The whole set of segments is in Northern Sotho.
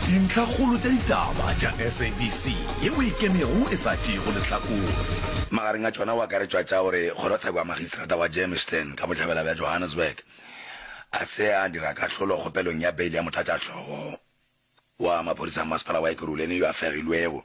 Dintlhakgolo tša ditaba tša SABC ye o e kemego e sa tšeego lehlakore. Magareng a tšona o akaretšwa tša gore kgorotsheko ya magistrata wa Germiston ka bohlabela bja Johannesburg a se a dira kahlolo kgopelong ya beili ya motlatšahlogo wa maphodisa a masepala wa Ekurhuleni yo a fegilwego,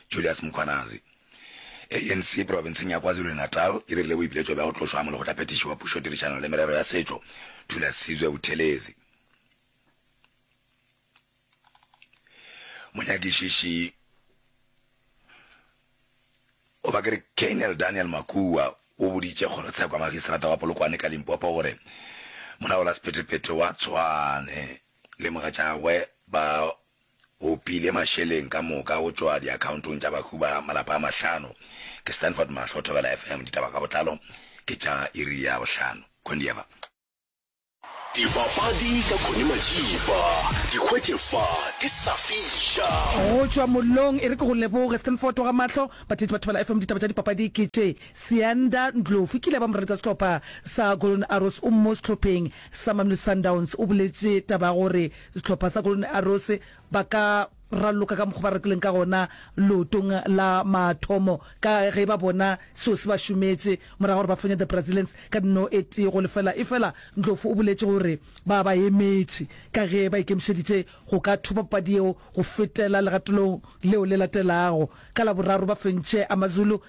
Julius Mkhwanazi. ANC profenseng ya KwaZulu-Natal e dirile boipiletšo bja go tlošwa ga molekgotlaphethiši wa pušo tirišano le merero ya setšo, Thula Sizwe Buthelezi. monyakišiši goba ke re colonel daniel makua o boditše kgorotshekwa magistrata wa polokwane ka limpopo gore molaola sephetephete wa tshwane le mogatšagwe ba opile mašeleng ka moka go tšwa diakhaontong tša bahu ba malapa a mahlano ke stanford mahlo thobela fm ditaba ka botlalo ke tša iri ya bohlano khondieva Dipapadi ka Connie Majiba, di hwetše fa di sa fiša. Go tšwa mollong e re ke go leboge Thinford wa ga Mahlo. Batheetši ba Thobela FM ditaba tša dipapadi ke tše, Sianda Ndlovu ke ile ya ba moradi ka sehlopha sa Golden Arrows o mo sehlopheng sa Mamelodi Sundowns o boletše taba ya gore sehlopha sa Golden Arrows ba ka raloka ka mokgo ba rakileng ka gona leotong la mathomo ka ge ba bona seo se ba šometše morago gore ba fenye the Brazilians ka dino e tee go lefela. Efela Ndlovu o boletše gore ba ba emetše ka ge ba ikemišeditše go ka thopa papadi yeo go fetela legatolong leo le latelago. Ka Laboraro ba fentše Amazulu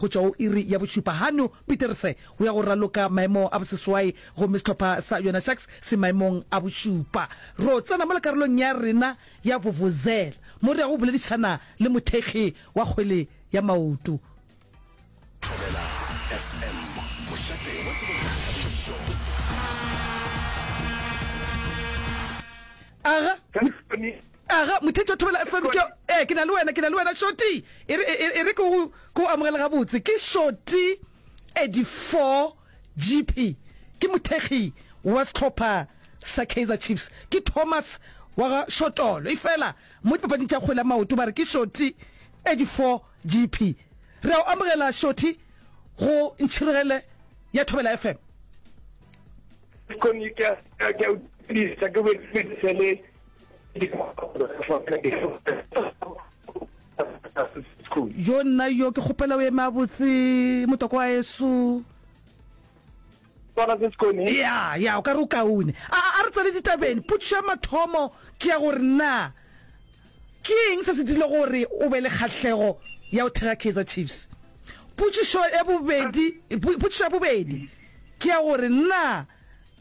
Go tšwa go iri ya bošupa Hannu Pieterse o ya go raloka maemo a boseswai gomme sehlopha sa Yona Sharks se maemong a bošupa. Ro tsena mo lekarolong ya rena ya Vuvuzela mo re yago go boledišana le mothekgi wa kgwele ya maoto. Thobela FM, mošate wa tsebo le boithabišo. Aga. Aga, motheetši wa thobela FM, ke, ee, ke na le wena, ke na le wena, Shorty. E re, e, e re ke go, ke go amogele gabotse. Ke Shorty Edifor Jeepy. Ke mothekgi wa sehlopha sa Kaizer Chiefs. Ke Thomas wa ga Shotolo. Efela, mo dipapading tša kgwele ya maoto ba re ke Shorty Edifor Jeepy. Re a o amogela, Shorty, go Ntšhirogele ya Thobela FM. Kgomo, ke a, ke a, ke a o tsebisa, ke go tsebisa le yo nna yo ke kgopela o eme a botse motoko wa eso ya ya o ka re o kaone a re tsale ditabeng potso ya mathomo ke ya gore na ke eng se se dile gore o be le kgatlhego ya o thega kaizer chiefs potšišo ya bobedi ke ya gore na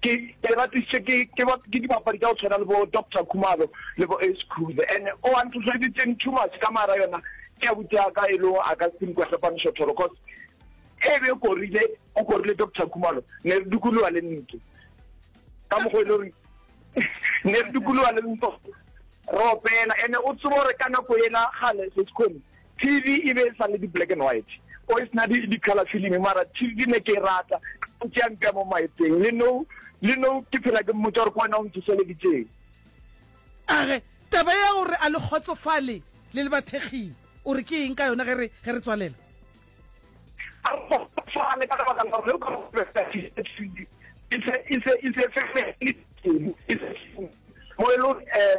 ke ke ratisitše ke ke ba ke dibapadi tša go tshwana le bo Doctor Khumalo le bo Ace Cruiser and o a nthohleditseng too much ka mara yona ke ya butse ka e lego a ka se nkwa sepanisho thoro cause e be korile o korile Doctor Khumalo ne re dukoloa le ntlo ka mokgo e le gore ne re dukoloa le ntlo re opela ene o tsebo gore ka nako ena gale se se kgone TV e be e sa le di black and white o e sena di color film mara TV ke ne ke e rata o tšea mpea mo maeteng le no le no ke phela ke mmotsa gore ke wena o nthoseleditseng a re taba ya gore a le kgotsofale le le bathekging o re ke eng ka yona ge re ge re tswalela a re kgotsofale ka lebaka la gore o ka go e se e se e se e se mo e le eh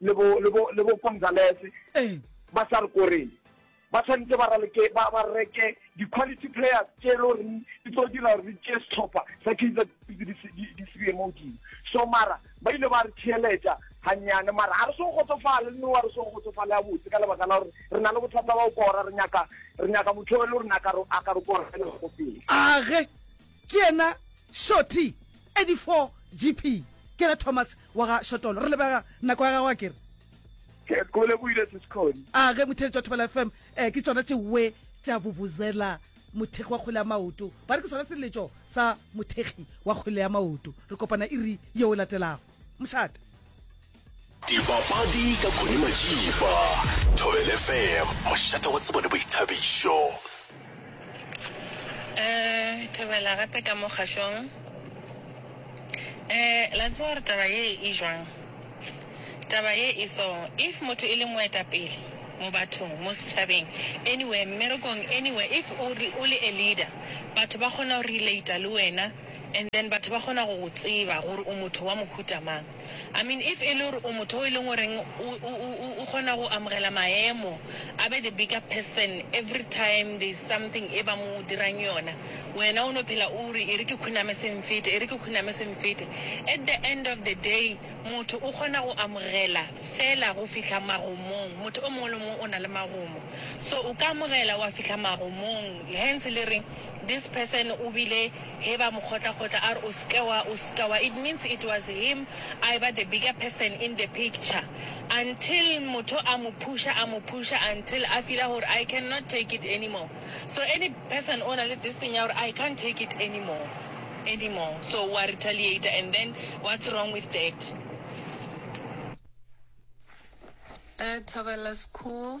le bo le bo le bo Gonzalez eh. ba sa re koreng ba tshwanetse ba raleke ba ba reke di quality players tse lo re di tlo dira re tse setlhopha sa kitsa di sibe mo di so mara ba ile ba re tsheletsa hanyane mara ha re so go tsofala le wa re so go tsofala ya botse ka lebaka la gore re na le bothata ba go kora re nyaka re nyaka motho le re naka ro aka re kora le go pele age Ke yena Shorty, 84 GP. Ke ra Thomas wa ga Shotolo. Re lebega nako ya gago akere? Kekole go ile Siskgoni. A ge motheletši wa Thobela FM eh, ke tšona tše we tša vuvuzela mothekgi wa kgwele ya maoto. Ba re ke sona seleletšo sa mothekgi wa kgwele ya maoto. Re kopana iri yeo e latelago. Mošate. Dipapadi ka Connie Majiba, Thobel FM, mošate wa tsebo le boithabišo. Eh, thobela gape ka mo kgašong. Eh, la tseba gore taba ye e jwang? Taba ye e so, if motho e le moetapele mo bathong, mo setšhabeng, anywhere, mmerekong, anywhere, if o re- o le a leader, batho ba kgona go relata le wena and then batho ba kgona go go tseba gore o motho wa mohuta mang. I mean if e le gore o motho o e leng goreng o o o o o kgona go amogela maemo, a be the bigger person every time there is something e ba mo dirang yona, wena o no phela o re e re ke khuname se nfete, e re ke khuname se nfete. At the end of the day motho o kgona go amogela fela go fihla magomong, motho o mongwe le mongwe o na le magomo. So o ka amogela wa fihla magomong, hence le re this person o bile. Ge ba mo kgotla-kgotla a re o se ke wa, o se ke wa, it means it was him a eba the bigger person in the picture until motho a mo pusha, a mo pusha until a feeler gore I can not take it anymore. So any person o na le this thing ya gore I can't take it anymore, anymore, so wa retaliator and then what's wrong with that? Thobela School.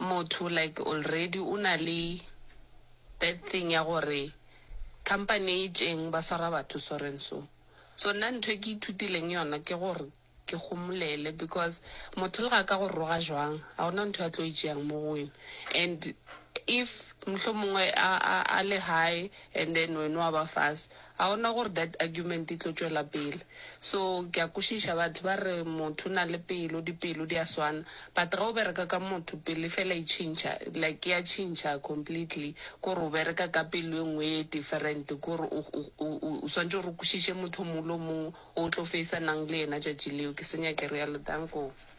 motho like already o na le that thing ya gore company e itšeng ba swara batho so and so. So nna ntho e ke ithutileng yona ke gore ke gomolele because motho le ga ka go roga jwang ga gona ntho a tlo e tšeang mo go wena and if mohlomongwe a le high and then wena wa ba fase A gona gore that argument e tlo tšwela pele. So ke a kwešiša batho ba re motho o na le pelo, dipelo di a swana, but ge o bereka ka motho pelo e fela e tšhintšha, like e a tšhintšha completely kore o bereka ka pelo e nngwe e different kore o, o, o, o, o swantše gore o kwešiše motho o mongwe le o mongwe o tlo feisanang le yena tšatši leo. Ke senya ke realo. Danko.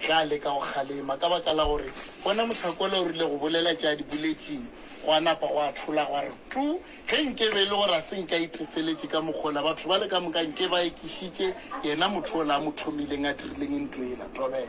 Ge a leka go kgalema ka baka la gore bona mosakwala o rile go bolela tše a di boletšeng, gwa napa gwa thola gwa re tu. Ge nke be e le gore a se nke a itefeletše ka mokgwa ola, batho bale ka moka nke ba ekišitše yena motho ola a mo thomileng a dirileng nto yela. Thobela.